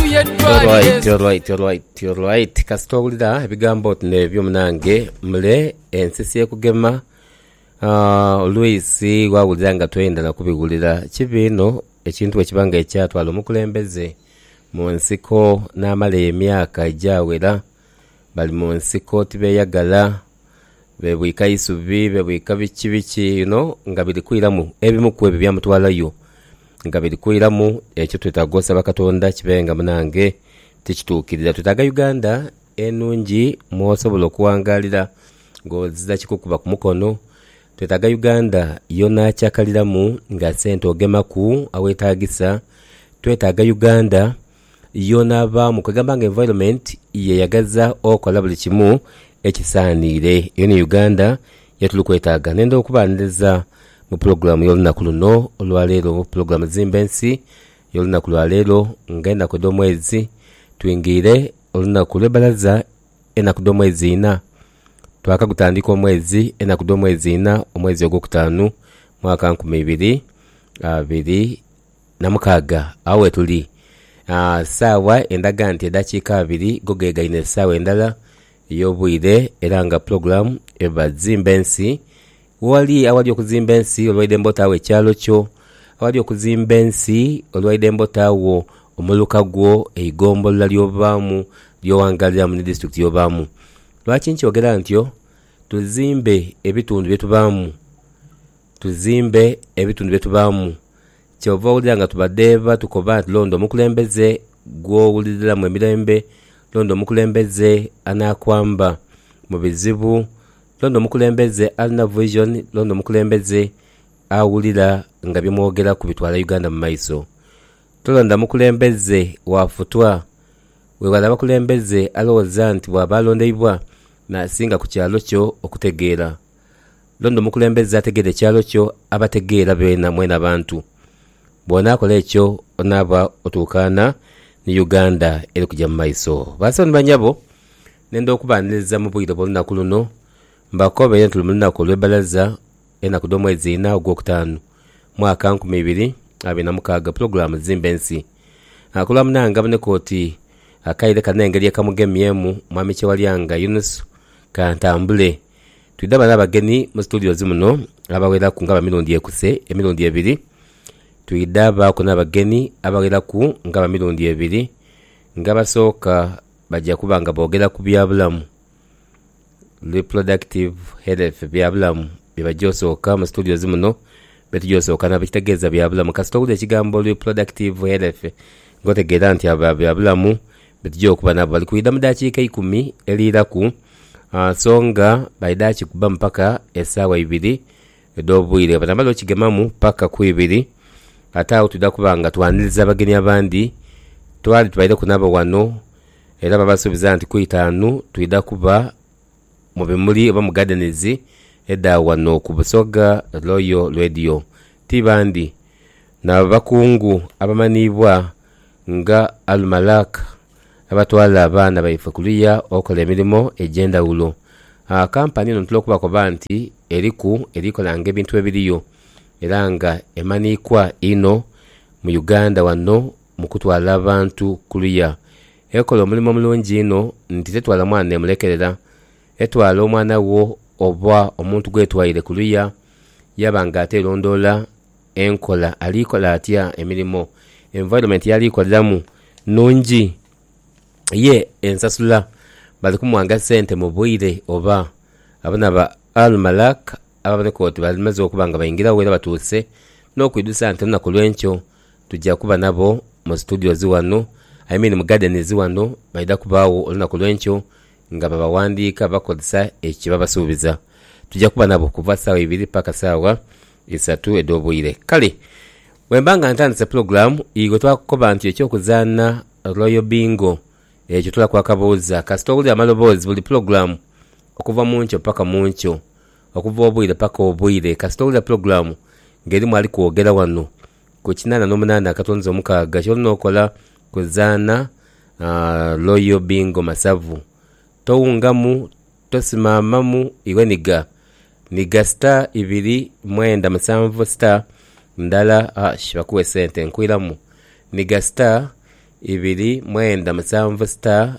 Alright, alright, alright, alright. Kasita owulira ebigambo oti nebyo munange mule ensi syekugema Ah, olwisi wawulira nga toyenda nakubiwulira kibi inho ekintu bwekiba nga ekyatwala omukulembeze munsiko namala emyaka egyawera Bali mu nsiko tibeeyagala, beebwika isubi, beebwika biki biki you know nga biri kwiramu ebimu ku ebyo ebyamutwalayo nga biri kwiramu. Ekyo twetaaga osaba Katonda kibe nga munange tikituukirira. Twetaaga Uganda enungi mw'osobola okuwangaalira ng'oziza kikukuba ku mukono. Twetaaga Uganda y'onaacakaliramu nga sente ogemaku aweetaagisa. Twetaaga Uganda Yoona abaamu kwegamba nga environment yeyagaza okola buli kimu ekisaaniire era ni Uganda yetuli kwetaaga. Nenda okubaaniriza mu pulogulaamu y'olunaku luno olwaleero mu pulogulaamu Zimba Ensi y'olunaku lwaleero nga enaku edh'omwezi twingiire olunaku lw'ebbalaza enaku dh'omwezi inha twakagutandika omwezi enaku dh'omwezi inha omwezi ogwokutaanu mwaka nkumi ibiri abiri Na mukaaga, agho wetuli. Aa, saawa endaga nti edakiika abiri go gegaine esaawa endala ey'obwire, era nga pulogulaamu eba Zimba Ensi. Ghali awali okuzimba ensi, olwaidembe otaagho ekyalo kyo. Awali okuzimba ensi, olwaidembe otaagho omuluka gwo, eigombolola ly'obaamu, ly'owangaaliramu ni disiturikiti y'obaamu. Lwaki nkyogera ntyo? Tuzimbe ebitundu bye tubaamu. Tuzimbe ebitundu bye tubaamu. Kyova owulira nga tubadheeba tukoba nti londa omukulembeze gw'owuliriramu emirembe, londa omukulembeze anaakwamba mu bizibu, londa omukulembeze alina vision, londa omukulembeze awulira nga bye mwogeraku bitwala Uganda mu maiso. Tolonda mukulembeze wa futwa. Weewale abakulembeze alowooza nti bw'aba alondeibwa n'asinga ku kyalo kyo okutegeera. Londa omukulembeze ategeere ekyalo kyo, abategeera beena mwena abantu. Bw'onaakola ekyo, onaaba otuukaana ni Uganda eri kuja mu maiso. Basawo ni banyabo, nenda okubaaniriza mu bwire bw'olunaku luno, mbakobeere nti luli mu lunaku olw'ebbalaza, enaku dh'omwezi ina ogw'okutaanu, mwaka nkumi ibiri abiri na mukaaga, pulogulaamu zimba ensi. Ku lwa munaange aboneka oti akaire kano engeri ekamugemyemu, Mwami Kyewalyanga Yunusu Kantambule, Twidhaba n'abagenhi mu situdiozi muno abagheraku nga bamirundi ekuse emirundi ebiri. Twidhabaaku n'abagenhi abagheraku nga bamirundi ebiri nga abasooka baja kuba nga boogera ku bya bulamu, reproductive health, bya bulamu bye baja osooka mu situdiozi muno bye tuja osooka nabo ekitegeeza bya bulamu. Kasita owulira ekigambo reproductive health ng'otegeera nti abo ba bya bulamu Betugya okuba nabo bali kwidha mu dakiika eikumi eliiraku, so nga baidha kikubamu paka esaawa ibiri edh'obwire. Bwebanaamala okigemamu paka ku ibiri, ate agho twidha kuba nga twaniriza abagenyi abandi. Twali tubaireku nabo ghano era babasuubiza nti ku itaanu twidha kuba mu bimuli oba mu gardens edha ghano ku Busoga Royal Radio ti bandi na bakungu abamanhiibwa nga Almalak abatwala abaana baife kuluya okola emirimo egy'endhaghulo. Kampani eno ntera okubakoba nti eriku eri kolanga ebintu ebiriyo era nga emanhiikwa inho mu Uganda wano mu kutwala abantu kuluya ekola omulimo mulungi inho nti tetwala mwana n'emulekerera. Etwala omwana wo oba omuntu gw'etwaire kuluya yaaba nga ate erondoola enkola ali kola atya emirimo, environment y'ali koleramu nnungi? Ye ensasula bali kumuwanga sente mu bwire oba? Abana ba Al-Malak ababoneka oti bamaze okuba nga baingirawo era batuuse n'okwidhusa nti olunaku olw'enkyo Tuja kuba nabo mu studios ghano, I mean mu gardens ghano, baidha kubaagho olunaku lw'enkyo nga babawandiika bakozesa ekyo kye babasuubiza. Tuja kuba nabo kuva saagha ibiri paka saagha isatu edh'obwire. Kale bwemba nga ntandise pulogulaamu, ighwe twakukoba nti eky'okuzaana Royal Bingo ekyo tulaku akabuuza kasita owulira amaloboozi buli pulogulaamu okuva mu nkyo paka mu nkyo. okuva obwire paka obwire kasita owulira pulogulamu nga erimu ali kwogera wano ku kinana nomunana akatonzi omukaaga kyolina okola kuzaana Royal Bingo Masavu towungamu tosimamamu iwe niga niga star ibiri mwenda musanvu star ndala ash bakuwe sente nkwiramu niga star ibiri mwenda musanvu star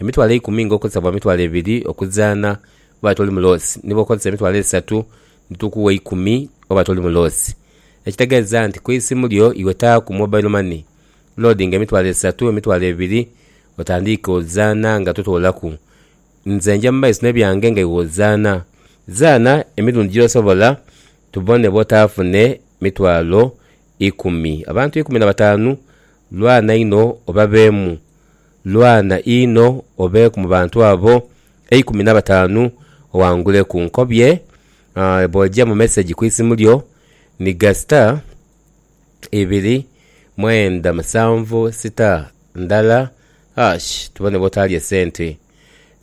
Emitwalo eikumi nga okozesa bwa mitwalo ebiri okuzaana oba toli muloosi ni bw'okozesa emitwalo esatu ni tukuwa eikumi oba toli muloosi. Ekitegeeza nti ku isimu lyo iwe taaku mobile money, loadinga emitwalo esatu, emitwalo ebiri otandiike ozaana nga totoolaku. Nze nja mu maiso n'ebyange nga iwe ozaana. Zaana emirundi gy'osobola tubone bw'otaafune mitwalo ikumi. Abantu ikumi na bataanu, lwana inho obabeemu. Lwana inho obeeku mu bantu abo eikumi na bataanu owanguleku. Nkobye bw'oja mu mesegi ku isimu lyo ni ga star ibiri mwenda musanvu star ndala hash tubone bw'otaalye sente.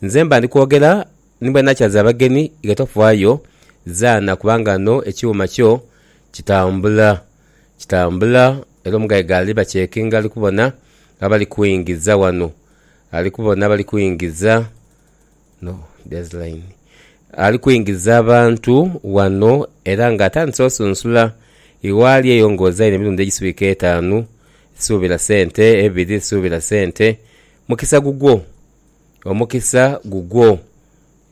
Nze mba ndi kwogera Ni bwe nakyaza abagenhi nga tofaayo zaana kubanga ghano ekyuma kyo kitambula. Kitambula era omugaiga ali bakyekinga ali kubona abali kuingiza ghano. Ali kubona abali kuingiza, no there's line. Ali kuingiza abantu ghano era nga atandise osunsula igh'ali eyo ng'ozaire emirundi egiswika etaanu, suubira sente, ebiri suubira sente, mukisa gugwo. Omukisa gugwo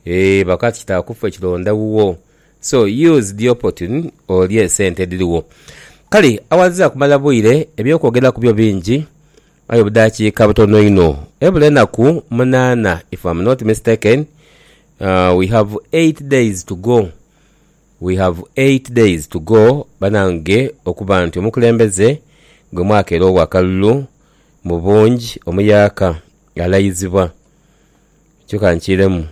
eeh baka kitaaku ffe kilonda wuwo so use the opportune olye esente edhirigho. Kale awanziza kumala bwire ebyokwogera kubyo bingi aye obudhakiika butono inho ebula enaku munana if am not mistaken we have eight days to go we have eight days to go banange okuba nti omukulembeze gwe mwakera owakalulu mubungi omuyaaka Ghalayizibwa. Kyo ka nkiiremu.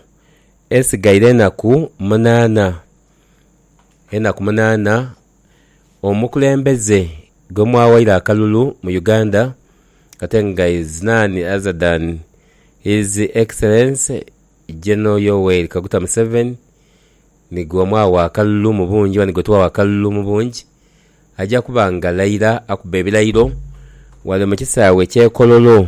Esigaire enaku munaana. Enaku munaana omukulembeze gwe mwawaire akalulu mu Uganda ate nga is none other than His Excellence General Yoweri Kaguta Museveni ni gwe mwagha akalulu mu bungi oba ni gwe twagha akalulu mu bungi, aja kuba ng'alayira akuba ebirayiro ghale mu kisaawe eky'e Kololo.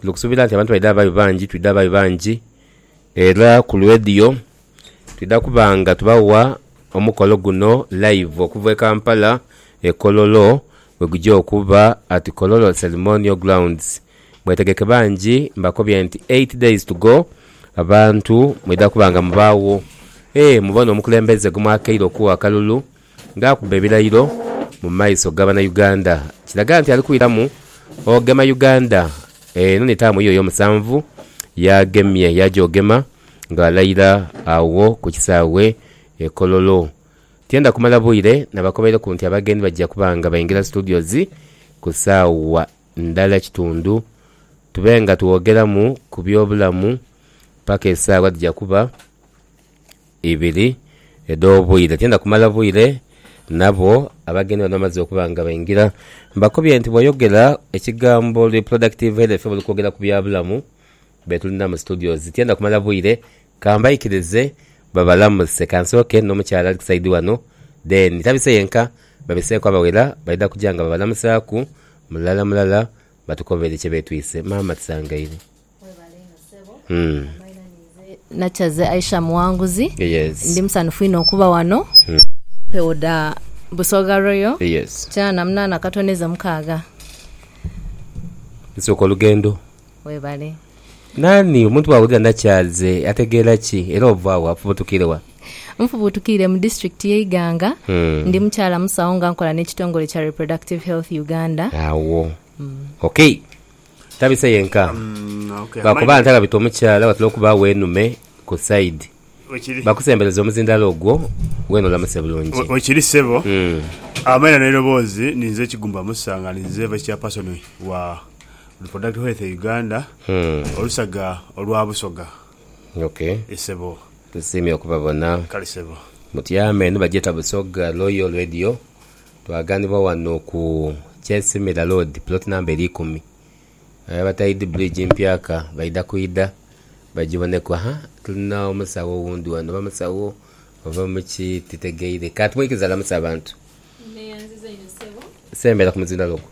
Tuli kusuubira nti abantu baidha babayo bangi, twidha babayo bangi era ku lwediyo twidha kuba nga tubawa omukolo guno live okuva e Kampala e Kololo bwegugya okuba at Kololo Ceremonial Grounds. Mwetegeke bangi mbakobye nti eight days to go abantu mwidha kuba nga mubaagho. Eeh mubone omukulembeze gwemwakeire okugha akalulu. Nga akuba ebilayiro mu maiso ga bana Uganda kiraga nti ali kwiramu ogema Uganda. Eno ni taamu ye ey'omusanvu y'agemye yaagyogema ng'alayira agho ku kisaawe e Kololo. Tienda kumala bwire nabakobeireku nti abagenyi baja kuba nga baingira Studios ku saawa ndala kitundu tube nga twogeramu ku by'obulamu paka esaawa dhija kuba. ibiri edh'obwire. Tiidha kumala bwire nabo abagenyi bano bamaze okuba nga baingira. Mbakubye nti bw'oyogera ekigambo Reproductive Health oba oli kwogera ku bya bulamu be tulina mu studios. Tiidha kumala bwire, ka mbaikirize babalamuse. Ka nsooke n'omukyala ali ku sayidi wano then tabise yenka, babiseeku abawera baidha kuja nga babalamusaaku mulala mulala batukobere kye beetwise. Maama tusangaire. Webale inho ssebo. Amaina ninze Nakyaze Aisha Muwanguzi. Ndi musanhufu inho okuba wano. Empewo dha Busoga Royal kinaana na munaana akatondezo mukaaga. Nsooka olugendo. Webale. Naani omuntu bwawulira Nakyaze ategeera ki era ova wa? Afubutukire wa? Nfubutukire mu disitulikiti y'e Iganga. Ndi mukyala musawo nga nkola n'ekitongole kya Reproductive Health Uganda. Agho. Okay. Tabise yenka lwakuba nti ababita omukyala watera okubaagho enume ku side bakusembereze omuzindalo ogwo wena olamuse bulungi. Wekiri ssebo. Amaina n'eiroboozi ni nze Kigumba Musa nga ni nze Vice Chairperson wa Reproductive Health Uganda, olusaga olwa Busoga. Ok. Ye ssebo. Tusiimye okubabona. Kale ssebo. Mutyame eno bagyeta Busoga Royal Radio. Twaganibwa wano ku Kyensimira Road plot number eri ikumi aye abataidhi bridge mpyaka baidha kwidha bajiboneku haa tulina omusawo owundi wano oba musawo oba muki titegeire kanti mwikiriza lamusa abantu. Neyanziza inho sebo. Sembera ku muzindaalo ogwo.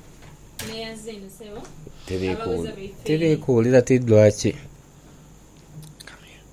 Neyanziza inho sebo. Abagheza baife. Tiri kuwulira ti lwaki.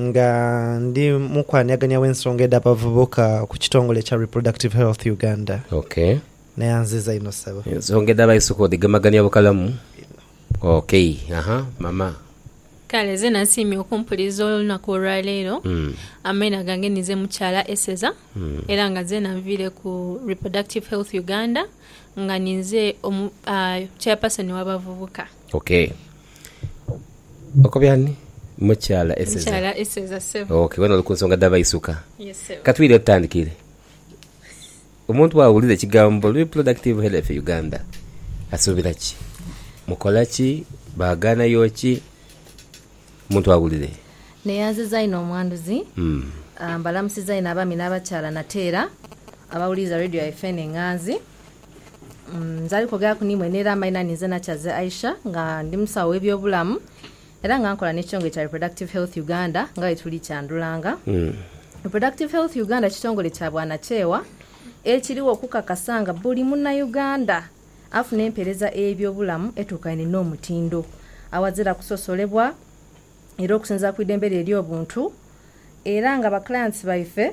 Nga ndi mukwanhiagania w'ensonga edh'abavubuka ku kitongole ekya Reproductive Health Uganda. Ok. Neyanziza inho ssebo. Ensonga edh'abaisuka odhigemagania bukalamu? Inho. Ok. Aha, mama. Kale zena nsiimye okumpuliriza olunaku olwaleero. Amaina gange ninze Mukyala Eseza era nga nzena nviire ku Reproductive Health Uganda nga ninze Chairperson w'abavubuka. Ok okobya ani? Mukyala Eseza. Mukyala Eseza sebo. Ok wena oli kunsonga dha baisuka. Yes sebo. Katwidhe tutandikire. Omuntu bwawulira ekigambo reproductive health Uganda asubira ki? Mukola ki? Baganhayo ki? Omuntu awulire. Neyanziza inho omwanduzi. Mbalamusiza inho abaami n'abakyala nate era abawuliriza radio yaife eno enghanzi. Nze ali kwogeraku ni mwe n'era amaina ni nze Nakyaze Aisha nga ndi musawo w'ebyobulamu era nga nkola n'ekitongole kya Reproductive Health Uganda nga bwetuli kyandhulanga. Reproductive Health Uganda kitongole kya bwanakyewa ekiriwo okukakasa nga buli Munauganda afuna empeereza ey'ebyobulamu etuukaine n'omutindo awazira kusosolebwa era okusinziira ku idembe lye ery'obuntu era nga ba clients baife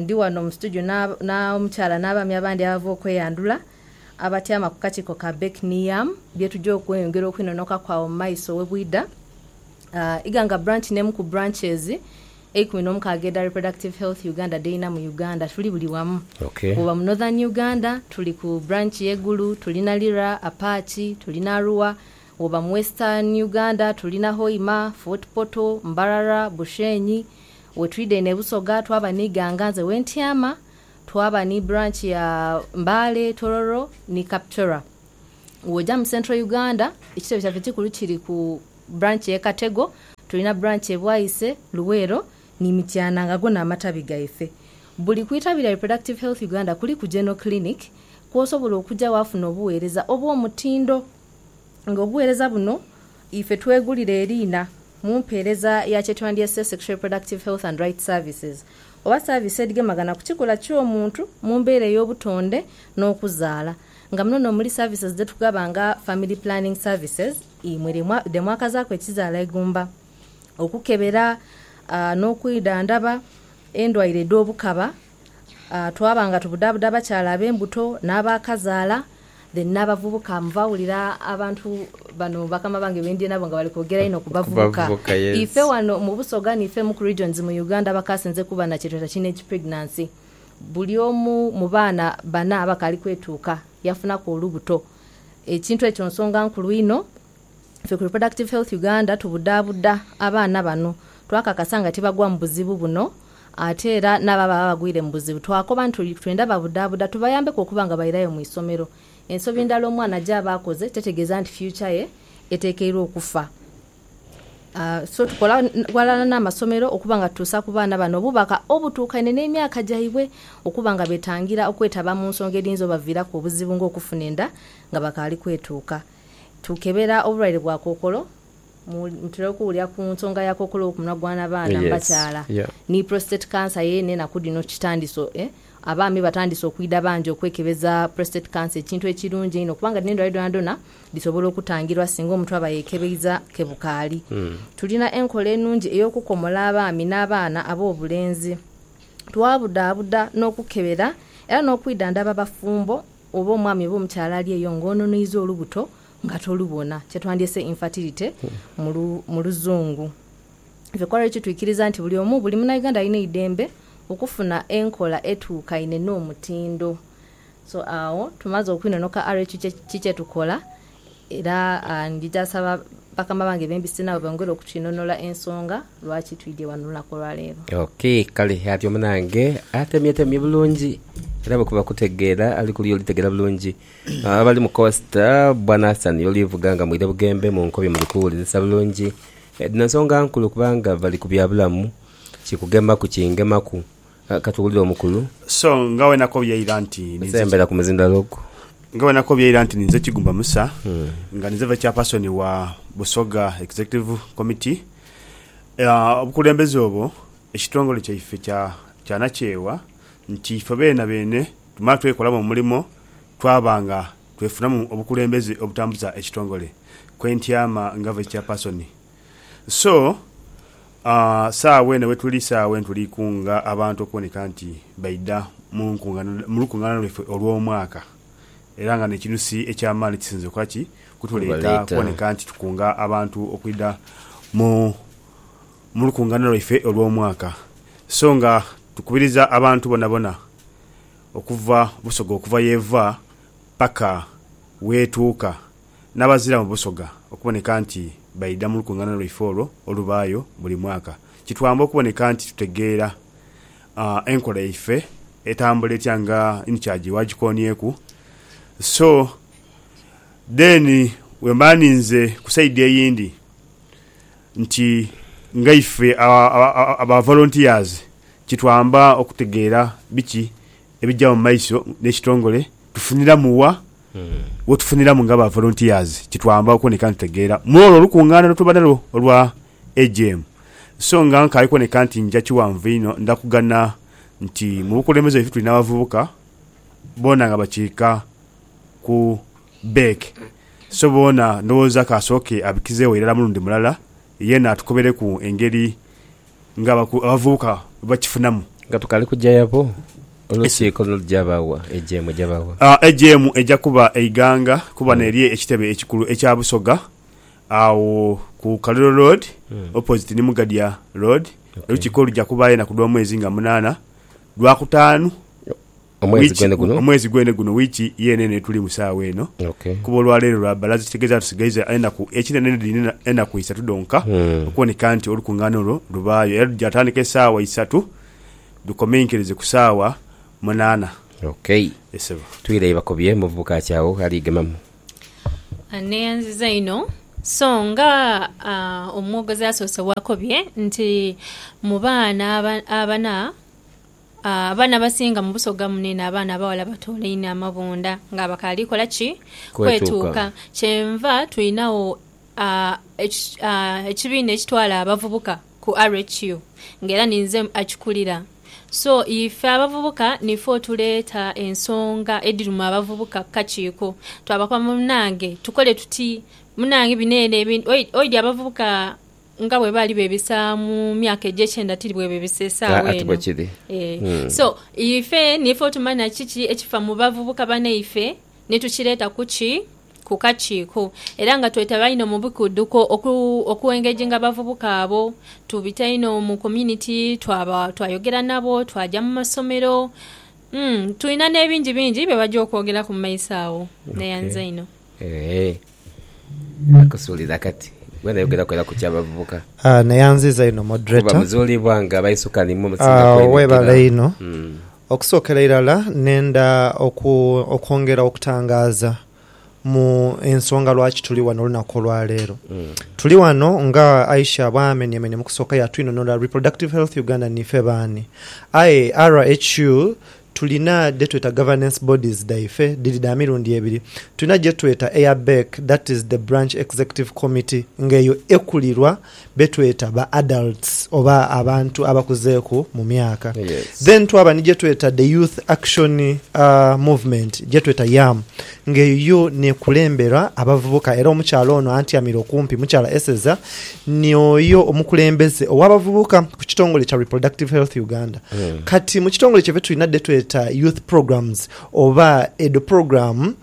Ndi wano mu situdio n'omukyala n'abaami abandi abava okweyandhula abatyama ku kakiiko ka Beck ni Yam bye tuja okweyongera okwinonokaku agho mu maiso we bwidha. Iganga Branch n'emu ku branches eikumi n'omukaaga edha Reproductive Health Uganda dh'erina mu Uganda. Tuli buli wamu. Bw'oba mu Northern Uganda, tuli ku branch y'e Gulu, tulina Lira, Apachi, tulina Arua. Bw'oba mu Western Uganda, tulina Hoima, Fort Portal, Mbarara, Bushenyi, We twidha eno e Busoga twaba ni Ganganze we ntyama, twaba ni branch ya Mbale, Tororo ni Kapchorwa. Woja mu Central Uganda, ekitebe kyaife ekikulu kiri ku branch ye Katego, tulina branch e Bwaise, Luweero ni Mityana nga go n'amatabi gaife. Buli ku itabi lya Reproductive Health Uganda kuliku General Clinic kwosobola okuja wafuna obugheereza obw'omutindo nga obugheereza buno Ife twegulira eriina mu mpeereza ya kyetwandyese Sexual Reproductive Health and Rights Services oba service edhigemaghana ku kikula ky'omuntu mu mbeera ey'obutonde n'okuzaala nga muno n'omuli services dhetugaba nga Family Planning Services imwe dhe mwakazaaku ekizaala eigumba, okukebera n'okwidhandhaba endwaire edh'obukaba. twaba nga tubudhaabuda abakyala ab'embuto n'abaakazaala, then n'abavubuka. Nva wulira abantu bano bakama bange be ndhi nabo nga bali kwogera inho ku bavubuka. Ife wano mu Busoga n'ife mu ku regions mu Uganda abakaasinze kuba na kye tweta teenage pregnancy, buli omu mu baana bana abakaali kwetuuka yaafunaku olubuto. Ekintu ekyo nsonga nkulu inho. Ffe ku Reproductive Health Uganda tubudaabuda abaana bano twakakasa nga tibagwa mu buzibu buno ate era n'abo ababa bagwire mu buzibu twakoba nti twenda babudaabuda tubayambeku okuba nga bairayo mu isomero. Ensobi ndala omwana gy'aba akoze tetegeeza nti future ye eteekeirwa okufa so tukola ghalala n'amasomero okuba nga tutuusa ku baana bano obubaka obutuukaine n'emyaka gyaibwe okuba nga beetangira okwetaba mu nsonga edhiyinza obaviiraku obuzibu ng'okufuna enda nga bakaali kwetuuka. Tukebera obulwaire bwa kookolo, mutera okuwulira ku nsonga ya kookolo ku munwa gw'abaana mu bakyala. Ni prostate cancer yeene enaku dhino kitandise, abaami batandise okwidha bangi okwekebeza prostate cancer ekintu ekirungi einho kubanga dhino endwaire dhonadhona dhisobola okutangirwa singa omuntu aba yeekebeiza ke bukaali. Tulina enkola enungi ey'okukomola abaami n'abaana ab'obulenzi. Twabudabuda n'okukebera era n'okwidhandhaba abafumbo oba omwami oba omukyala ali eyo nga ononhoiza olubuto nga tolubona, kyetwandyese infertility mu luzungu. Ife kwa Rachel twikiriza nti buli omu, buli Munauganda alina eidembe okufuna enkola etuukaine n'omutindo. So agho tumaze okwinonoka Rachel ki kyetukola Era ndidha saba bakama bange be mbise nabo bongere okukinhonhola ensonga lwaki twidhye ghano olunaku olwa leero. Ok, kale atyo munange atemyetemye bulungi era bwe kuba kutegeera ali kuliya olitegeera bulungi. Abali mu Costa, bwa Nathan y'olivuga nga mwidha bughembe mu nkobi muli kuwulirisa bulungi. Dhino nsonga nkulu kubanga bali ku bya bulamu, kikugemaku kingemaku. Ka tuwulire omukulu. So nga wenakobye eira nti ninze. Nsembera ku muzinda log. Nga wenakobye eira nti ninze Kigumba Musa, nga ninze Vice Chairperson wa Busoga Executive Committee. Obukulembeze obwo ekitongole kyaife kya nakyewa nti ife beena beene tumala twekolamu omulimo twaba nga twefunamu obukulembeze obutambuza ekitongole, kwentyama nga Vice Chairperson. So, saagho eno wetuli, saagho eno tuli kunga abantu okuboneka nti baidha mu lukungaana lwaife olw'omwaka. Era nga n'ekintu si eky'amaani ekisinze okukola ki? Okutuleeta okuboneka nti tukunga abantu okwidha mu lukungaana lwaife olw'omwaka. So nga tukubiriza abantu bonabona okuva Busoga okuva y'eva paka w'etuuka. n'abazira mu Busoga okuboneka nti baidha mu lukungaana lwaife olwo olubaayo buli mwaka. Kitwamba okuboneka nti tutegeera enkola yaife etambula etya nga Incharge bw'agikoonyeku. So then bwemba ninze ku side eyindi nti nga ife aba volunteers kitwamba okutegeera biki ebija mu maiso n'ekitongole Tufuniramu Wa? wetufuniramu nga ba volunteers kitwamba okuboneka nga tutegeera mw'olwo olukungaana lwetuba nalwo olwa AGM. So nga nkali kuboneka nti nja kiwanvu inho, ndha kugana nti mu bukulembeze bwaife tuli n'abavubuka boona nga bakiika ku Beck. So boona ndhowooza k'asooke abikizeegho irala mulundi mulala, yeena atukobereku engeri nga abavubuka bakifunamu. Nga tukaali kuja yabo, olukiiko lulija bawa ejeemu eja bawa. Ejeemu eja kuba eighanga kuba n'eri ekitebe ekikulu ekya Busoga agho ku Kaliro Road opposite ni Mugadya Road. Olukiiko luja kubaayo enaku dh'omwezi nga munaana, Lwakutaanu. Omwezi gwene guno? Omwezi gwene guno, wiiki yeene eno yetulimu saagha eno. Okay. Kuba olwaleero lwa bbalaza ekitegeeza tusigaiza enaku ekinene dhino enaku isatu dhonka okuboneka nti olukungaana olwo lubaayo era lujja tandika esaawa isatu lukomenkerize ku saawa munaana. Okay. Ye Ssebo. Twiireyo bakobye omuvubuka ki agho ali gemamu? Neeyanziza inho. So nga omwogozi asoose bw'akobye nti mu baana abana, Abaana abasinga mu Busoga mune n'abaana abaghala batoola inho amabunda nga bakaali kola ki? Kwetuuka. Kyenva twinagho ekibiina ekitwala abavubuka ku RHU nga era ni nze akikulira. So ife abavubuka nife otuleeta ensonga edhiruma abavubuka ku kakiiko. Twabakoba munange tukole tuti? Munange bino eno ebintu, oidhi abavubuka. Nga bwe baali beebisa mu myaka egy'ekyenda, tiri bwe beebisa esaawa eno. Ati bwe kiri. Ee. So, ife niife otumanya kiki ekifa mu bavubuka banaife ni tukireeta ku ki? Ku kakiiko. Era nga twetaba inho mu bikuduko oku, okuengejinga abavubuka abo. Tubita inho mu community, twaba, twayogera nabo, twaja mu masomero. Umm, tulina n'ebingi bingi bye baja okwogeraku mu maiso agho. Neyanza inho. Eeh nakusuuliza kati gwe noyogera ku era ku kyabavubuka. Aah neyanziza inho moderator. Kuba muzulibwa nga baisuka nimwo musinga kwenhikira. Aah webale inho. Okusokera irala nenda okwongera okutangaza mu ensonga lwaki tuli ghano olunaku olwaleero. Tuli ghano nga Aisha bwamenyemenye mukusooka yatwinhonhora Reproductive Health Uganda nife baani. Aye RHU Tulina dhe tweta governance bodies dhaife, dhiri dha mirundi ebiri. Tulina gye tweta eya BEC, that is the Branch Executive Committee, nga eyo ekulirwa be tweta ba adults oba abantu abakuzeeku mu myaka. Then twaba ni gye tweta the Youth Action Movement, gye tweta YAM. Ng'eyo yo n'ekulembera abavubuka era omukyala ono antyamire okumpi, Mukyala Eseza, ni oyo omukulembeze ow'abavubuka ku kitongole kya Reproductive Health Uganda. Kati mu kitongole kyaibwe tulina dhe tweta Youth Programs oba edho pulogulaamu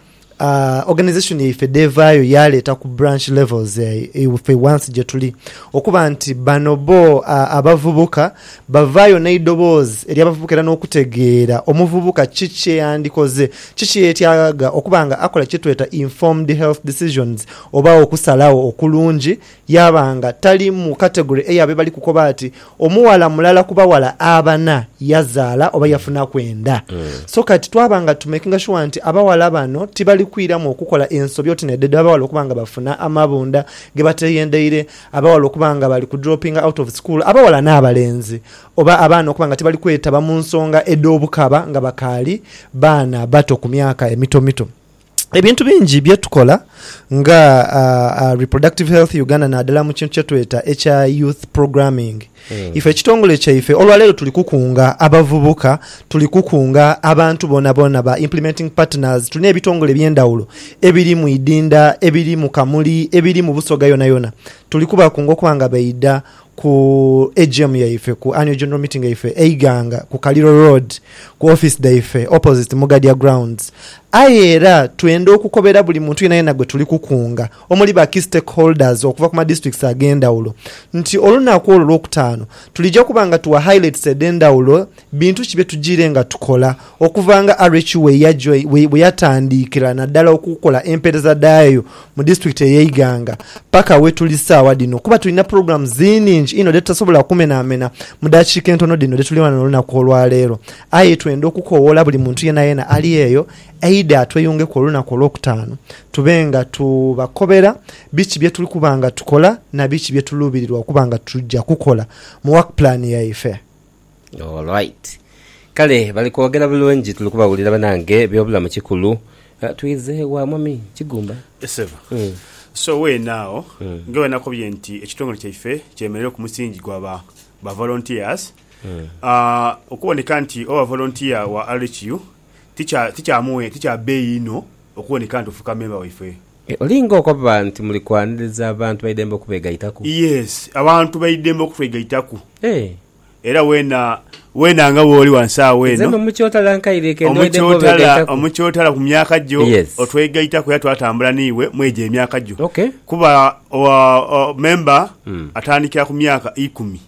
organisation yaife dh'evaayo yaaleeta ku branch levels ife wansi gye tuli okuba nti bano bo abavubuka Bavaayo n'eidoboozi ery'abavubuka era n'okutegeera omuvubuka ki kye yandikoze, ki kye yeetyagagha okuba nga akola kye tweta informed health decisions oba okusalagho okulungi, yaaba nga tali mu category ey'abo ebali kukoba ati omughala mulala ku baghala abana yazaala oba yafunaku enda. So kati twaba nga tu makinga shuwa nti abaghala bano tibali kwiramu okukola ensobi oti n'edho edh'abaghala okuba nga bafuna amabunda ge bateeyendeire, Abaghala okuba nga bali ku dropping out of school, abaghala n'abalenzi, oba abaana okuba nga tibali kwetaba mu nsonga edh'obukaba nga bakaali baana bato ku myaka emitomito. Ebintu bingi bye tukola nga Reproductive Health Uganda naddala mu kintu kye tweta ekya Youth Programming, Ife ekitongole kyaife olwa leero tuli kukunga abavubuka, tuli kukunga abantu boonaboona, ba Implementing Partners. Tulina ebitongole eby'endhawulo ebiri mu Idinda, ebiri mu Kamuli, ebiri mu Busoga yonayona. Tuli kubakunga okuba nga baidha ku AGM yaife, ku Annual General Meeting yaife e Iganga ku Kaliro Road ku office dhaife opposite Mugadya Grounds. Aye era twenda okukobera buli muntu yenayena gwe tuli kukunga. omuli ba Key Stakeholders okuva ku ma Districts ag'endhawulo nti olunaku olwo Lwokutaano tulija kuba nga tugha highlights edh'endhawulo bintu ki bye tujiire nga tukola okuva nga RHU bwe yatandiikira naddala okukola empeereza dhayo mu District eye Iganga paka we tuli saawa dhino kuba tulina programs nhingi inho dhe tutasobola kumenamena mu dakiika entono dhino dhe tuli ghano olunaku olwaleero aye twenda okukowoola buli muntu yenayena ali eyo Eidha tweyungeku olunaku olwokutaanu, tube nga tubakobera biki bye tuli kuba nga tukola na biki bye tuluubirirwa okuba nga tuja kukola mu work plan yaife. Alright. Kale bali kwogera bulungi tuli kubawulira banange ebyobulamu kikulu. Twize wa mwami Kigumba? Ssebo. So weena agho nga bwe nakobye nti ekitongole kyaife kyemerera ku musingi gwa ba ba volunteers, okuwoneka nti oba volunteer wa RHU ti kya mughe, ti kya beeyi inho okuboneka nti ofuuka memba waife. Olinga okoba nti muli kwaniriza abantu baidembe okubegaitaku. Yes, abantu baidembe okutwegaitaku. Era wena, wena nga wooli wansi agho eno. Nze no mu kyotala nkaire ke ndwaideko obegaitaku. Omu kyotala ku myaka gyo otwegaitaku era twatambula n'iwe mu egyo emyaka gyo. Kuba memba atandikira ku myaka ikumi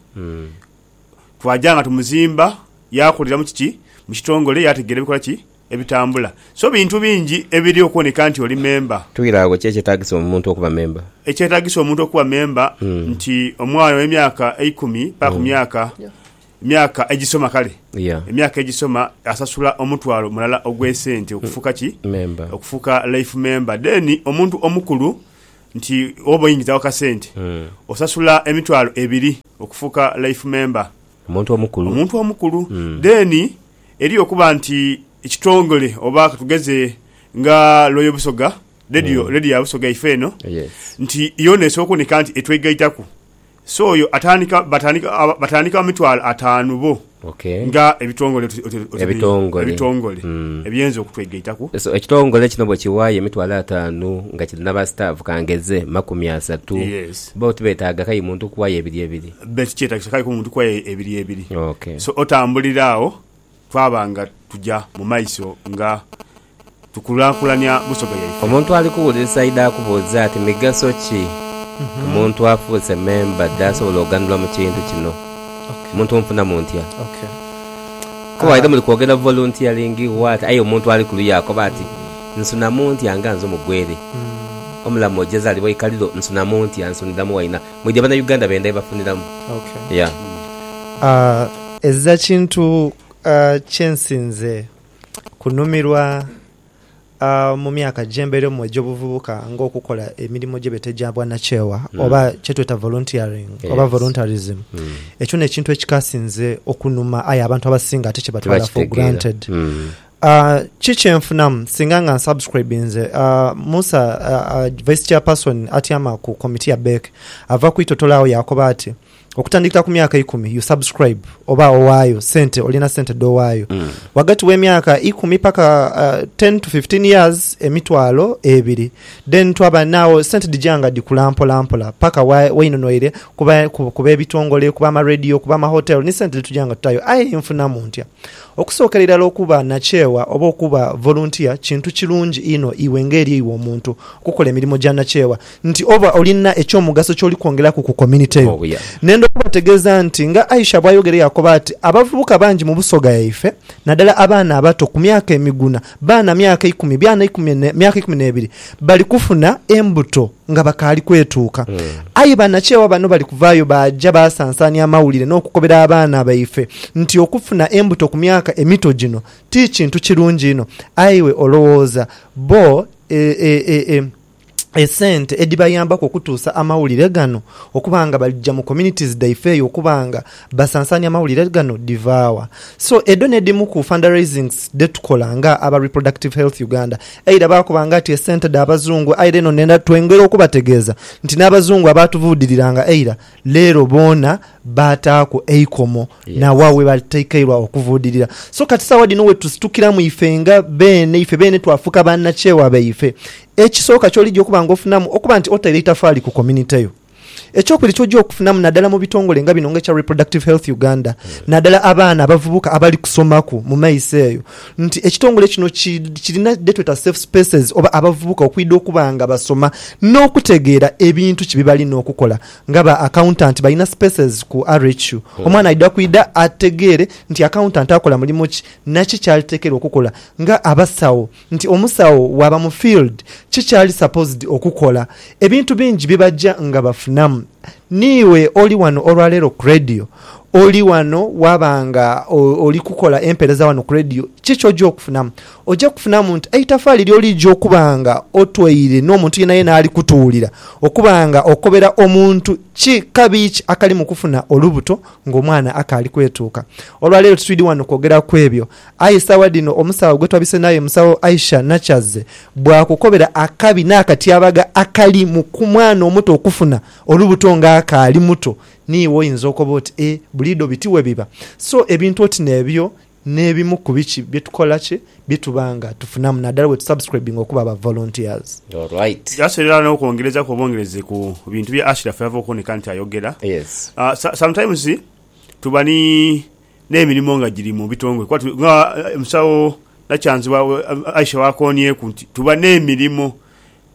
twaja nga tumuzimba yakuliramu kiki mu kitongole yategeera ebikola ki ebitambula. So bintu bingi ebiri okuboneka nti oli memba. Twire agho ki ekyetaagisa omuntu okuba memba? Ekyetaagisa omuntu okuba memba nti omwana ow'emyaka eikumi paka ku myaka emyaka egisoma kale emyaka egisoma asasula omutwalo mulala ogw'esente okufuuka ki okufuuka life memba. Then omuntu omukulu nti oba oingizawo kasente osasula emitwalo ebiri okufuuka life member, Omuntu omukulu. omuntu omukulu. Then eriyo okuba nti ekitongole oba katugeze nga Loyal Busoga, radio radio ya Busoga ife eno, Yes. nti yoona esooka oneka nti etwegaitaku So oyo atandika batandika aba batandika mitwalo ataanu bo Okay. nga ebitongole oti- oti- oti- Ebitongole. ebitongole Mm. ebiyinza okutwegaitaku. So ekitongole kino bwe kiwaayo emitwalo ataanu nga kiri n'abasitaafu kangeze makumi asatu, Yes. bo tibetaaga kai muntu kuwaayo ebiri ebiri? Be tikyetagisa kai ku muntu kuwaayo e- ebiri ebiri. Okay. So otambulira agho twaba nga tuja mu maiso nga tukulaakulanya busoga yaife. Omuntu ali kuwulirisa aidha akubuuze ati, Migaso ki omuntu afuuse memba dh'asobola oghanulwa mu kintu kino? Omuntu omufunamu ntya? Kuba waidha muli kwogera voluntiyaringi waati aye omuntu ali kuluya akoba ati, Nsunamu ntya nga nze omugwere? Omulamu oja zaalibwa ikaliro, nsunamu ntya? Nsuniramu waina? Mwidhi Abanauganda benda bye bafuniramu. Yeah. Ezira kintu kye nsinze kunhumirwa mu myaka gye mbeiremu egy'obuvubuka ng'okukola emirimo gye beeta egya bwanakyewa hmm. oba kye tweta volunteering oba voluntarism. Hmm. Ekyo n'ekintu ekikasinze okunuma aye abantu abasinga ate kye batwala for granted. Hmm. Ah, ki kye nfunamu singa nga nsubscribinze ah, musa ah, vice chairperson atyama ku komiti ya bek ava kwitotolawo yakoba ati Okutandikira ku myaka ikumi you subscribe oba owaayo sente olina sente dhowaayo mm. wagati w'emyaka ikumi paka uh, 10 to 15 years emitwalo ebiri then twaba naawo sente dhija nga dhikula mpolampola paka wainonwaire kuba, kuba, kuba ebitongole kuba amaradio kuba amahotel ni sente dhetuja nga tutayo aye nfunamu ntya okusookera irala okuba nakyewa oba okuba volunteer kintu kirungi ino iwe ng'eri iwe omuntu okukola emirimu gya nakyewa nti oba olina eky'omugaso ky'oli kwongeraku ku community yo. Nenda okubategeeza nti nga Aisha bw'ayogera yakoba ati, Abavubuka bangi mu Busoga yaife, nadala abaana abato ku myaka emiguna, baana myaka ikumi, byana ikumi, myaka ikumi n'ebiri, bali kufuna embuto nga bakaali kwetuuka. Aye banakyewa bano bali kuvaayo baaja baasansaania amawulire n'okukobera abaana baife nti okufuna embuto ku myaka emito gino ti kintu kirungi inho. Aye iwe olowooza bo e, e, e, e. esente edhibayambaku okutuusa amawulire gano okuba nga balija mu communities dhaife eyo okuba nga basansanya amawulire gano dhivawa? So edho nedhimu ku fundraisings dhetukola nga aba Reproductive Health Uganda either bakuba nga ti esente dha bazungu aire eno twongera okubategeeza nti n'abazungu abaatuvuudiriranga eira Leero boona baataaku eikomo n'aghagho we bataikairwa okuvuudirira. So kati saagha dhino we tusitukiramu ife nga beene, ife beene twafuuka bannakyewa baife. Ekisooka ky'oligya okuba ng'ofunamu okuba nti otaire eitafaali ku community yo. Ekyokubiri ky'oja okufunamu naddala mu bitongole nga bino nga ekya Reproductive Health Uganda, naddala abaana abavubuka abali kusomaku mu maiso eyo, nti ekitongole kino kirina dhetweta safe spaces oba abavubuka okwidha okuba nga basoma n'okutegeera ebintu ki byebalina okukola nga ba accountant balina spaces ku RHU omwana aidha kwidha ategeere nti accountant akola mulimo ki naki kyalitekeerwa okukola nga abasawo nti omusawo waaba mu field ki kyali supposed okukola ebintu bingi byebaja nga bafunamu. Niiwe oli wano olwaleero ku radio Oli wano waba nga oli kukola empereza wano ku Radio, ki ky'oja okufunamu? Oja kufunamu nti eitafaali ly'olija okuba nga otweire n'omuntu yenayena ali kutuwulira okuba nga okobera omuntu ki kabi ki akali mu kufuna olubuto ng'omwana akaali kwetuuka. Olwa leero titwidhi wano kwogera ku ebyo, aye sawa dhino omusawo gwe twabise naye, Omusawo Aisha Nakyazze, bwakukobera akabi n'akatyabaga akali mu mwana omuto okufuna olubuto ng'akaali muto Niiwe oyinza okoba oti, Ee, buliidho biti bwe biba. So, ebintu oti n'ebyo n'ebimu ku biki bye tukola ki bye tuba nga tufunamu, naddala bwe tusubscribinga okuba aba volunteers. All right. Just era n'okwongereza ku obwongereze ku bintu bya Ashiraf by'ava okuboneka nti ayogera, Yes. so, sometimes tuba ni n'emirimo nga giri mu bitongole kuba tu, nga Musawo Nakyanzi bwa, Aisha bw'akoonyeeku nti tuba n'emirimo,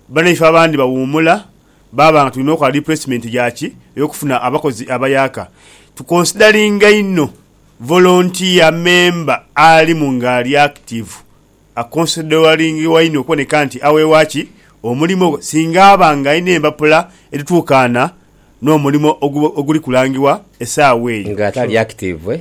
banaife abandi bawuumula Baaba nga tulina okola replacement ya ki eyokufuna abakozi abayaaka, tu consideringa inho volunteer member alimu nga ali active, aconsideringibwa inho okuboneka nti aweebwa ki omulimo ogwo singa aba nga alina empapula edhituukaana n'omulimo oguli kulangibwa esaawa eyo. Nga tali active,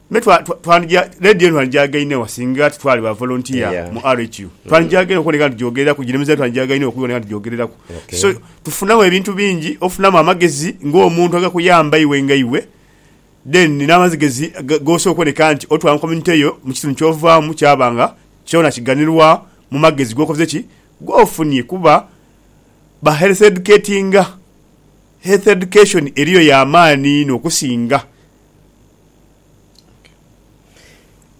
Me twa, twa, twanija, leediyo eno twanijaaga inho egho singa titwali ba volunteer Yeah. mu RHU. Mm. Twanijaaga inho okuboneka nti tugyogereraku, gino emize twanijaaga inho okuboneka nti tugyogereraku. Okay. So, tufunamu ebintu bingi, ofunamu amagezi ng'omuntu agakuyamba iwe nga iwe, then n'amazigezi ga- g'osobola okuboneka nti otwala mu community yo, mu kitundu ky'ovaamu kyaba nga kyona kiganirwa mu magezi g'okoze ki, g'ofunye kuba ba health educatinga. Health education eriyo ya maani inho okusinga.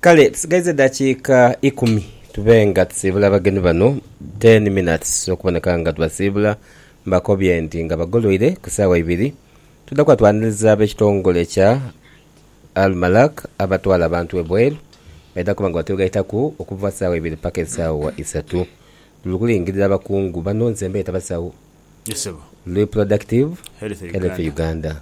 Kale tusigaiza eddakiika ikumi tube nga tusiibula abagenyi bano, ten minutes okuboneka nga tubasiibula. Mbakobye nti nga bagoloire ku saawa ibiri twidha kuba twaniriza ab'ekitongole ekya Almalak abatwala abantu ebweru baidha kuba nga batwegaitaku okuva saawa ibiri paka esaawa isatu. Tuli kulingirira bakungu bano nze mbeeta basawo, Reproductive Health Uganda.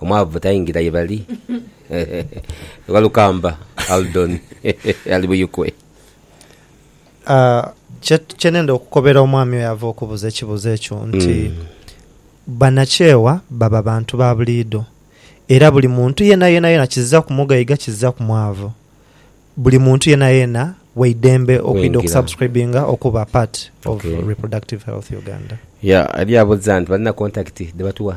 Omwavu taingira ye bali. Walukamba Aldon ali Buyikwe. Kye nenda okukobera omwami oyo ava okubuza ekibuzo ekyo nti banakyewa baba bantu ba buliidho era buli muntu yena yena yena kiziza ku mugaiga kiziza ku mwavu buli muntu yena yena waidembe okwidha oku subscribinga okuba part of reproductive health Uganda. Yeah ali abuza nti balina contact dhe batuwa.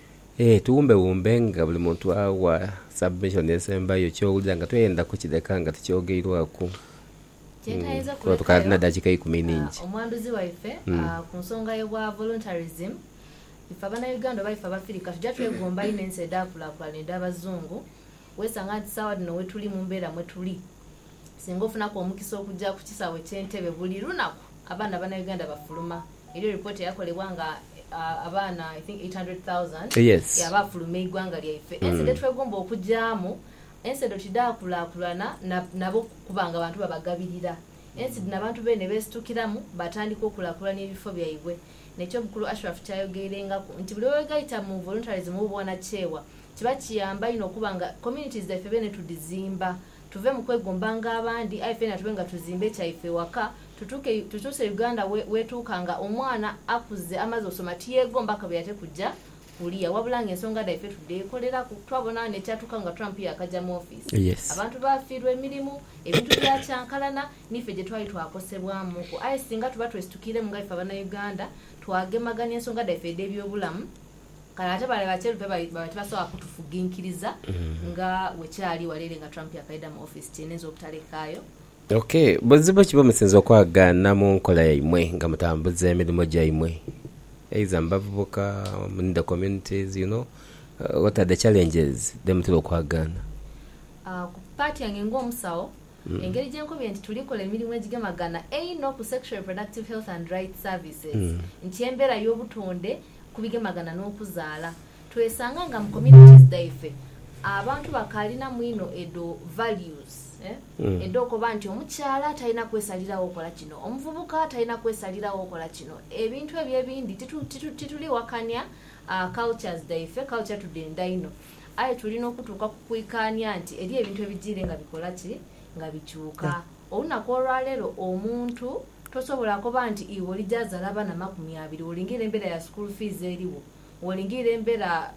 Ee, tuwumbewumbe nga buli muntu awa submission esembayo ky'owulira nga toyenda kukireka nga tikyogeirwaku. Kyetaayiza Kuba tukaali na okulekayo dakiika ikumi ningi. omwanduzi waife ku nsonga y'obwa voluntarism, ife Abanauganda oba ife Abafirika tuja twegomba inho ensi edhaakulaakulana edh'Abazungu Weesanga nti saagha dhino we tuli mu mbeera mwe tuli, singa ofunaku omukisa okuja ku kisaawe eky'Entebbe buli lunaku abaana Bannayuganda bafuluma. Eriyo ripooti eyakolebwa nga abaana I think eight hundred thousand ya baafuluma eighwanga lyaife. Ensi dhetwegomba okujaamu, ensi edho tidhaakulaakulana na nabo kuba nga bantu babagabirira. Ensi dhino abantu beene beesitukiramu baatandika okulaakulania ebifo byaibwe. N'ekyobukulu Ashraf ky'ayogeirengaku nti buli we weegaita mu voluntarism oba obwanakyewa, Kiba kiyamba inho okuba nga communities dhaife bene tudhizimba, tuve mu kwegombanga abandi aye fena tube nga tuzimba ekyaife ewaka, tutuuke tutuuse Uganda wetuuka nga omwana akuze amaze osoma tiyegomba akabe ate kuja kulia wabula nga ensonga dhaife tudhekoleraku. Twabona ghano ekyatuuka nga Trump yaakaja mu office, abantu baafiirwa emirimu, ebintu byakyankalana niife gyetwali twakosebwamuuku aye singa tuba twesitukiremu nga ife abanauganda twagemagania ensonga dhaife edhebyobulamu Kale ate bale bacherupe baba tibasobola kutufuginkiriza nga bwe kyali wala ere nga Trump yakaidha mu office kye neenza obutalekaayo. Ok, buzibu ki bwe musinza okwagaana mu nkola yaimwe nga mutambuza emirimo gyaimwe? Either mu bavubuka, in the communities, you know, what are the challenges dhe mutera okwagaana? Ku part yange nga omusawo, engeri gye nkobye nti tuli kola emirimo egigemagana einho ku Sexual Reproductive Health and Rights Services nti embera y'obutonde ku bigemagana n'okuzaala. Twesanga nga mu communities dhaife abantu bakaalinamu inho edho values edh'okoba nti omukyala talina kwesaliragho kola kino, omuvubuka talina kwesaliragho kola kino. Ebintu ebyo ebindi tituli wakania cultures dhaife, culture tudhenda inho. Aye tuli n'okutuuka ku kwikaania nti eriyo ebintu ebijiire nga bikola ki? Nga bikyuka. Olunaku olwaleero omuntu Tosobola koba nti iwe oli gyazala abana makumi abiri wolingirira embera ya school fees eriwo, wolingirira embera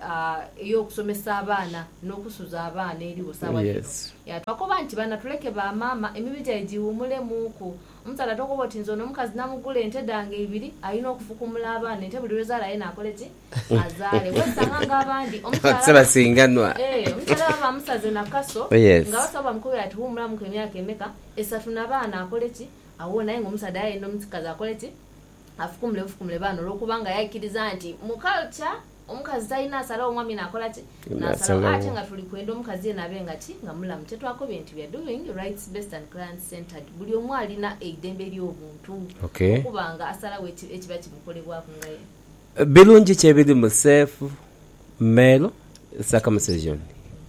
eyokusomesa abaana nokusuza abaana eriwo sawa dhino. Yeah twakoba nti bana tuleke ba mama emibi gyaibwe gyiwumule muku. Omusaadha tokoba oti nze ono omukazi namugula ente dhange ibiri alina okufukumula abaana ente buli lwezala yena akoleki azale. Wesanga nga abandi omukyala eeh omukyala baba bamusaze nakaso nga abasawo bamukobera ati wumulamuku emyaka emeka esatu nabaana akoleki Agho naye nga omusaadha yali aidha omukikazi akole ki? Afukumule bufukumule baano olw'okuba nga yaikiriza nti mu culture omukazi talina asalawo omwami naakola ki? Naasalawo. Aye ate nga tuli kwenda omukazi yeena abe nga ki? Nga mulamu. Kyetwakobye nti we are doing rights based and client centered. Buli omu alina eidembe ly'obuntu Okay. okuba nga asalawo eki ekiba kimukolebwaku nga ye. Birungi ki ebiri mu safe male circumcision?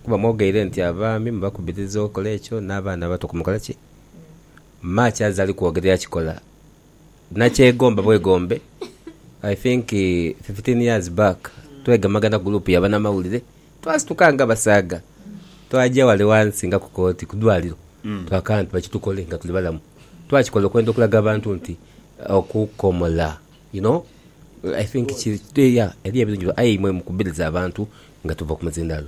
Kuba mwogeire nti abaami mubakubiriza okola ekyo n'abaana abato kumukola ki? Mma kyazali kwogera yakikola nakyegomba bwegombe I think fifteen years back twegemagana group yabanamawulire twasituka nga abasaadha twaja wale wansi nga kukooti kudwaliro twakana nti bakitukole nga tuli balamu twakikola okwenda okulaga abantu nti okukomola you know I think kiri eriyo ebirungi aye imwe mukubiriza abantu nga tuva kumuzindalo.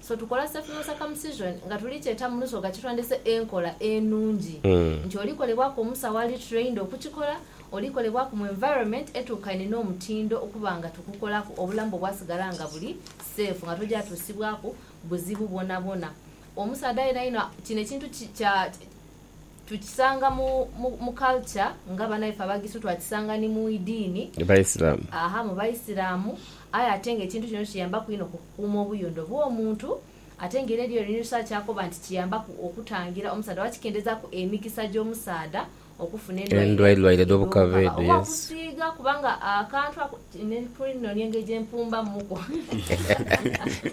So tukola circular circumcision nga tuli kyeta mu lusoga kitwandese enkola enungi nti oli kolebwaku omusawo ali trained okukikola, oli kolebwaku mu environment etuukaine n'omutindo okuba nga tukukolaku obulamu bwo bwasigala nga buli safe nga tojatusibwaku buzibu bwonabwona. Omusaadha yenayena kino ekintu kya. Tukisanga mu mu culture nga banaife Abagisu, twakisanga ni mu idiini, Baisilamu. aaha, mu Baisilamu, aye ate nga ekintu kino kiyambaku inho ku kukuuma obuyondo bw'omuntu. Ate nga era eriyo ni research akoba nti kiyambaku okutangira omusaadha oba kikendhezaaku emikisa gy'omusaadha okufuna endwaire Endwaire edh'obukaba edh'obukaba edho, oba yes. okusiiga kubanga akantu ako ne ku nonia engeri gye mpumbamuku.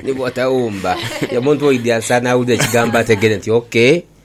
Ni bw'otawumba, omuntu oidhi asaana awulire ekigambo ategere nti okay,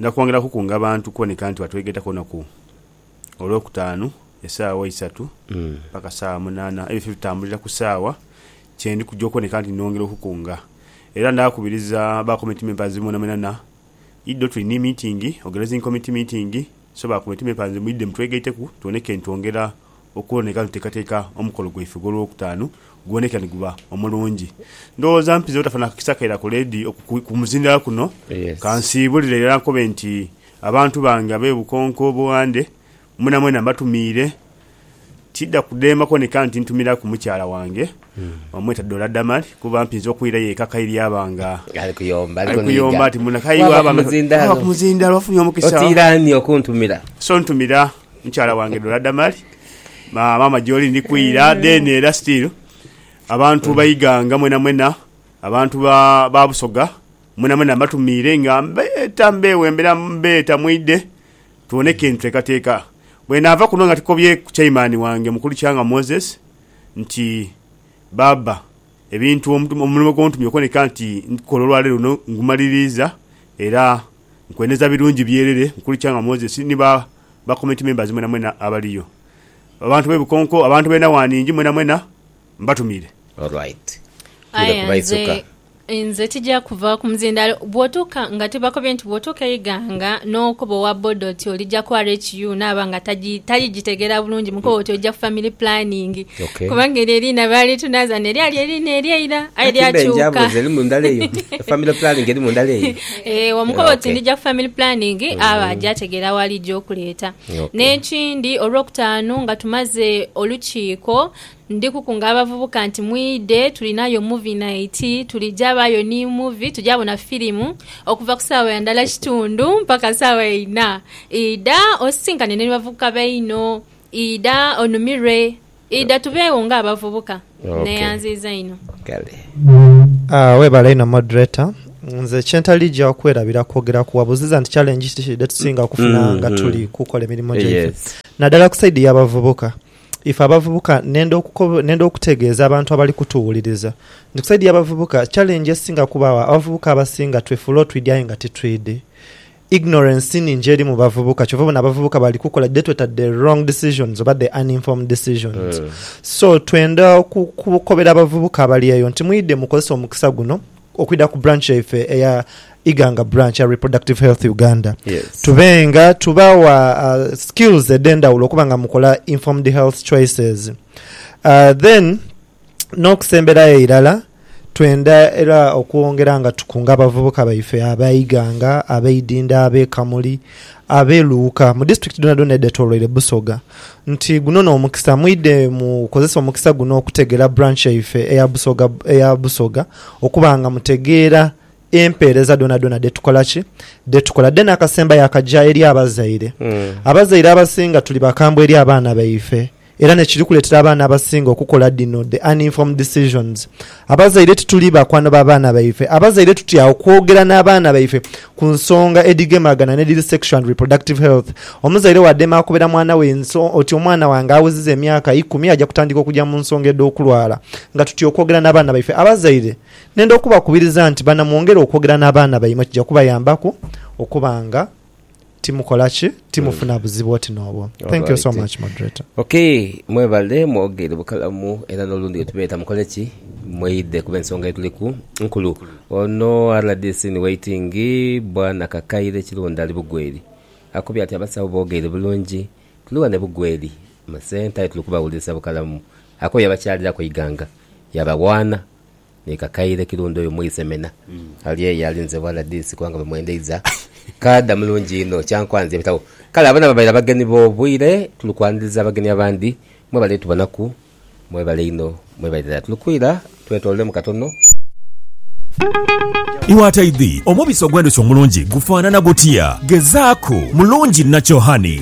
Nja kwongera kukunga bantu kuboneka nti batwegaitaku olunaku Olwokutaanu esaawa isatu paka saawa munaana ebifo ebitambulira ku saawa kyendi kuja okuboneka nti nongera okukunga. Era ndakubiriza ba committee members mwenamwenana idho tuli ni meeting, organizing committee meeting, so ba committee members mwidhe mutwegaiteku tuboneke nti twongera okwona nga tuteekateeka omukolo gwaife ogw'Olwokutaanu guboneka ni guba omulungi. Ndowooza mpize obutafuna kakisa kaira ku leediyo ku muzindalo kuno ka nsiibulire irala nkobe nti abantu bange ab'e Bukonko Buwande mwenamwena mbatumiire. Tidha kudemba kuboneka nti ntumiraku mukyala wange bamweta Dorah Damali kuba mpinze okwirayo eka kairi yaba nga ali kuyomba ati muno kayi waaba nga waaba ku muzindalo ofunye omukisa so ntumira. Mukyala wange Dora Damali maama gyoli ndi kwira then era still abantu ba Iganga mwena mwena abantu ba ba Busoga mwena mwena mbatumiire nga mbeeta mbewembera mbeeta mwidhe tubone ekyentutekateka. Bwenaava kuno nga tukobye ku chaimani wange mukulu Kyanga Moses nti Baaba ebintu omulimo gwontumye okoneka nti ndikukola olwaleero luno ngumaliriiza era Nkweneza birungi byerere nkulikya nga Moses ni ba ba community members mwenamwena abaliyo. Abantu be Bukonko, abantu be Nawanhingi mwenamwena mbatumire. Alright tule Aye nze kubaithuka. nze tija kuva kumuzindalo bwotuka nga tibakobye nti bwotuka e Iganga nokoba owa boda oti olija ku RHU naba nga taji talijitegera bulungi mukobe oti oja ku family planning Okay. kubanga eryo eriina baali tunaza neryali eriina eryeira aye Hati mbe lyakyuka. njamboza eri mundala eyo? Family planning eri mundala eyo? Eeh omukoba oti ndija ku family planning aba mm-hmm. aja ategeera waali gy'okuleeta. N'ekindi Olwokutaanu nga tumaze olukiiko ndi kukunga abavubuka nti mwidhe tulinayo movie night tulija baayo ni movie tuja bona firimu okuva ku saawa ya ndala kitundu mpaka saawa ya ina. Idha osisinkane ni bavubuka baino idha onumirwe. Idha tubeegho nga abavubuka. Neyanziiza inho. Kale. Aah webale inho moderator. Nze kyentali gya kwerabira kwogera ku wabuziza nti challenge ki dhetusinga okufuna nga tuli kukola emirimo gyaife nadala ku side ya bavubuka. Ife abavubuka nenda nenda okutegeeza abantu abali kutuwuliriza nti ku side ya bavubuka challenge esinga kubagho abavubuka abasinga twefuula otwidi aye nga titwidi. Ignorance ningi eri mu bavubuka kyova obona abavubuka bali kukola dhe tweta the wrong decisions oba the uninformed decisions mm. so twenda kukobera abavubuka abali eyo nti mwidhe mukozese omukisa guno okwidha ku branch yaife eya iganga branch ya reproductive health uganda yes. tube nga tubawa uh, skills edhendawulo okuba nga mukola informed health choices uh, then N'okusemberayo irala, twendha era okwongera nga tukunga abavubuka baife aba Iganga, ab'e Idhindha, ab'e Kamuli, ab'e Luuka, mu disiturikiti dhoonadhoona edhetoloire Busoga nti guno n'omukisa mwidhe mukozese omukisa guno okutegeera branch yaife eya Busoga okuba nga mutegeera empeereza dhonadhona dhetukola ki dhetukola then akasembayo akaja eri abazaire mm. abazaire abasinga tuli bakambwe eri abaana baife era nekiri kuletera abaana abasinga okukola dhino the uninformed decisions abazaire tituli bakwano babaana baife abazaire tutya okwogera n'abaana baife ku nsonga edhigemagana nedhiri sexual and reproductive health omuzaire wadema akobera mwana we nso oti omwana wange aweziza emyaka ikumi aja kutandika okuja mu nsonga edhokulwala nga tutya okwogera n'abaana baife abazaire Nhenda okubakubiriza nti banamwongera okwogera n'abaana baimwe kija kubayambaku okuba nga timukola ki? Timufuna buzibu oti n'obwo. Thank you so Alright. much moderator. Ok mwebale mwogere bukalamu era nolundi wetubeeta mukole ki? Mweidhe kuba ensonga yetuliku nkulu. Ono rdc in waiting bwana Kakaire Kirunda ali Bugweri akubye ati abasawo bogeire bulungi tuli wano e Bugweri mu centre aye tuli kubawulirisa bukalamu. Akooye abakyaliraku eiganga yabawaana. Ni kakaire kirundi oyo mwise mena ali eyo alinze bwana DC kubanga bwe mwendeiza kaadha mulungi inho kyankwanzi ebitabo. Kale abona babaire abagenyi bobwire tuli kwaniriza abagenyi abandi mwebale tubonaku mwebale inho mwebale irala tuli kwira twetololemu katono. Iwe ataidhi, omubisi ogw'endhuki omulungi gufaanana gutya? Gezaaku, mulungi nakyo, honey.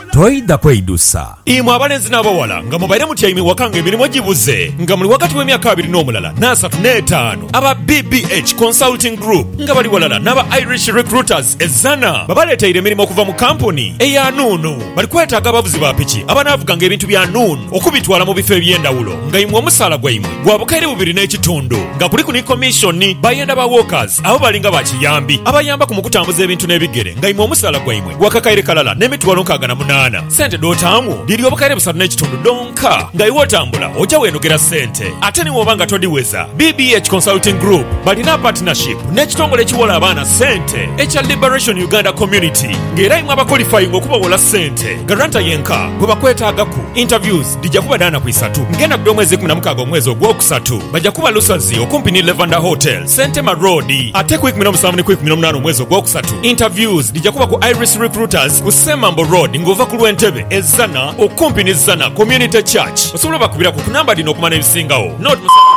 toidha kweidusa. Imwe abalenzi n'abaghala nga mubaire mutyaime waka nga emirimo gibuze nga muli ghagati w'emyaka abiri n'omulala n'asatu n'etaanu, aba BBH Consulting Group nga bali ghalala n'aba Irish Recruiters e Zzana babaleeteire emirimo okuva mu kampuni eya Nuunu. Bali kwetaaga abavuzi ba piki abanaavuganga ebintu bya Nuunu okubitwala mu bifo eby'endhawulo nga imwe omusaala gwaimwe gwa bukaire bubiri n'ekitundu nga kuliku ni komishoni. Bayenda ba walkers abo bali nga ba kiyambi abayambaku mu kutambuza ebintu n'ebigere nga imwe omusaala gwaimwe Waka kaire kalala n'emitwalo nkaaga na munaana. Sente dh'otaamu dhiri obukaire busatu n'ekitundu dhonka. Nga iwe otambula oja weenogera sente ate ni bw'oba nga todhiweza. BBH Consulting Group balina partnership n'ekitongole ekiwola abaana sente ekya Liberation Uganda Community nga era imwe abakolifayinga okubawola sente garanta yenka gwe bakwetaagaku. Interviews dhija kuba dha naku isatu ng'enakudha omwezi ikumi na mukaaga omwezi ogw'okusatu. Baja kuba Lusazi okumpi ni Levander Hotels. Sentema Road ate ku ikumi n'omusanvu ni ku ikumi n'omunaana omwezi ogwokusatu interviews dhija kuba ku Iris Recruiters ku Semambo Road nga ova ku lw'e Ntebe e Zzana okumpi ni Zzana Community Church. Osobola obakubiraku ku namba dhino okumanya ebisingawo. Note, Musabe.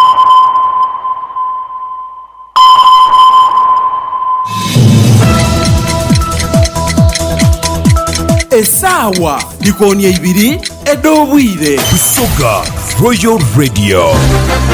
Esaawa dhikoonie ibiri edh'obwire. Busoga Royal Radio.